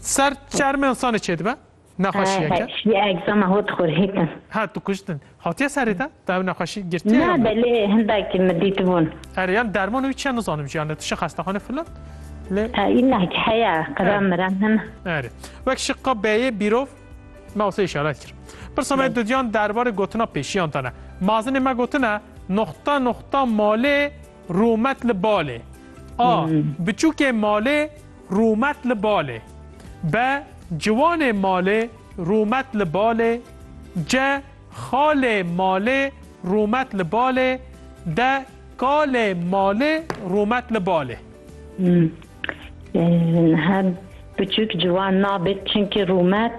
Ser çermê insanê çêdibe nexweşiyeke. Şiyê egzama hot xurhêtin. Ha tu kuştin. Hatiye serê te? Te ev nexweşî girtiye? Na belê hindakî min dîtibûn. Erê yan derman wî çiya nizanim jî yani tu şi xestaxane filan. Lê înnakî heya qira miran hene. Erê. Wek şiqa beyê bîrov me wase îşaret kir. Pirsa me dudiyan derbarê gotina pêşiyan te ne. Mazinê me gotine noxta noxta malê Rûmet li balê. A. Biçûkê malê rûmet li balê. B. Ciwanê malê rûmet li balê. C. Xalê malê rûmet li balê. D. Kalê malê rûmet li balê. Niha biçûk ciwan nabêt çimkî rûmet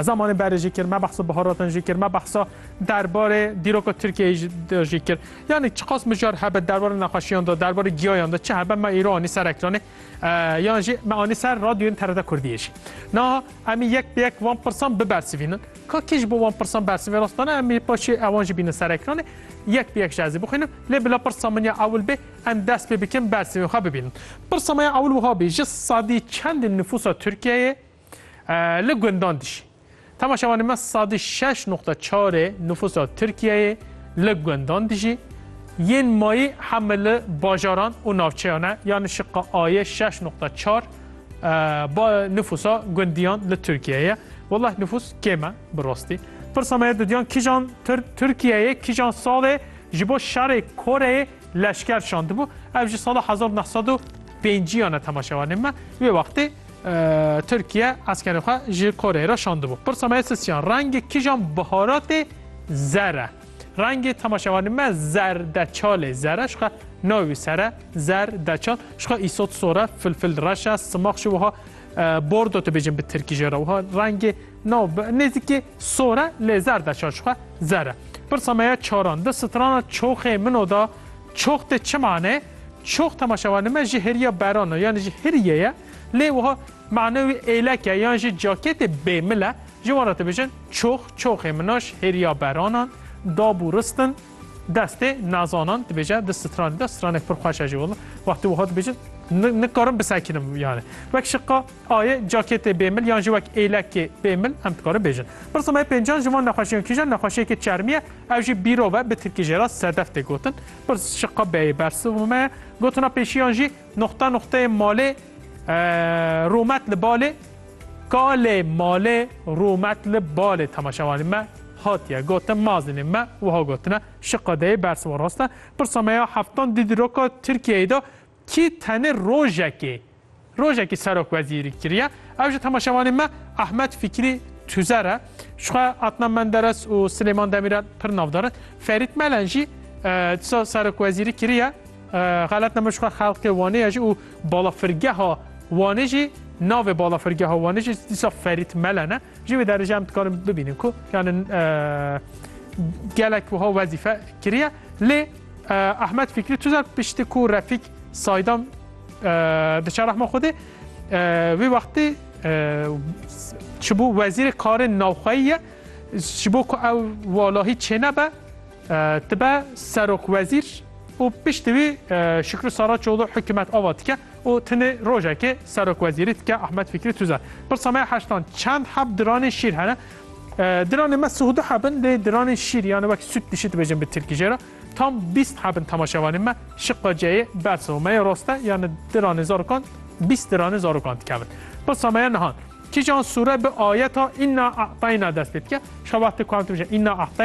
Zamanê berê jî kir, me behsa biharatan jî kir, me behsa derbarê dîroka Tirkiyeyê jî de jî kir. Yanî çiqas mijar hebe derbarê nexweşiyan de, derbarê giyayan de çi hebe me îro anî ser ekranê yan jî me anî ser radyoyên TRT Kurdiyê jî. Niha em ê yek bi yek van pirsan bibersivînin. Ka kî ji bo van pirsan bersivê rastane em ê paşê ewan jî bînin ser ekranê. Yek bi yek ji ez ê bixwînim. Lê bila pirsa min ya ewil bê em dest pê bikin bersivên xwe bibînin. Pirsa me ya ewil wiha bî, ji sedî çendê nifûsa Tirkiyeyê, Li gundan de jî. Tema şevanê me sadî şeş noqta çarê nifûsa Tirkiyeyê li gundan de jî. Yên mayî heme li bajaran û navçeyan e. Yanî şiqa ayê şeş noqta çar nifûsa gundiyan li Tirkiyeyê ye. Wellah nifûs kêm e bi rastî. Pirsa me didiyan kîjan Tirkiyeyê kîjan salê ji bo şerê Koreyê leşker şandibû. Ev ji sala hezar neh sed û pêncîyan e tema şevanê me. Wê wextê Tirkiye eskerên xwe ji Koreyê re şandibû. Pirsa me sisiyan rengê kijan biharatê zer e. Rengê temaşevanê me zerdeçalê zer e. Şixwe navî sere zer deçal. Şixwe îsot sore filfil reş e. Simax ji wiha bordo tu bêjin bi tirkî jê re. Wiha rengê nav nêzîkî sore lê zer deçal şixwe zer e. Pirsa me ya çaran di strana çoxê min o da çox tê çi mane? Çox temaşevanê me ji hêriya beran e yanî ji hiriyê ye lê wiha mane wî êlek e yan jî cakêtê bêmil e ji wan re dibêjin çox çoxê min a ji hêriya beranan dab û rist in destê nazanan dibêje di stranê de stranek pir xweş e jî wila wextê wiha dibêjin nikarim bisekirim yanî wek şiqa ayê cakêtê bêmil yan jî wek êlekê bêmil em dikarin bêjin pirsa me pêncan ji van nexweşiyan kîjan nexweşiyekê çermî ye ew jî bîrov e bi tirkî jê re sedef tê gotin Pirs ji qebeyê bersivime gotina pêşiyan jî noxta noxteyê malê romet li balê kalê malê romet li balê temaşewanê me hatiye gotin mazinê me wiha gotine şi qedeyê bersiva raste pirsa me ya heftan dî di roka Tirkiyeyê de Kî tenê rojekê rojekî serokwezîrî kiriye. Ev ji temaşevanên me Ahmet Fikrî Tuzer e. Jixwe Adnan Menderes û Silêman Demîrel pir navdar in. Ferît Melen jî disa serokwezîrî kiriye. Xelet nebe jixwe xelkê Wanê ye jî û balafirgeha Wanê jî navê balafirgeha Wanê jî dîsa Ferît Melen e. Ji wê derê jî em dikarin bibînin ku yani gelek wiha wezîfe kiriye lê Ahmet Fikrî Tuzer pişti ku Refîk Saydan diçe rehma Xwedê wê wextê ji bo wezîrê karên navxweyî ye ji bo ku ew walahî çênebe tibe serok wezîr û piştî wî Şükrü Saraçoğlu hikûmet ava dike. Û tenê rojekê serokwezîrî tike Ahmet Fikrî Tuze pirsa me ya heştan çend heb diranên şîr hene? Diranên me sih û du heb in lê diranên şîr yan wek sût pişî dibêjin bi tirkî jê re tam bîst heb in temaşevanên me şiqa ceyê bersiva me ya rast e yan diranên zarokan bîst diranên zarokan dikevin. Pirsa me ya nihan kîjan sûre bi ayeta Inna A'tayna dest pê dike? Şixa wextê ku em dibêjin Inna A'tayna.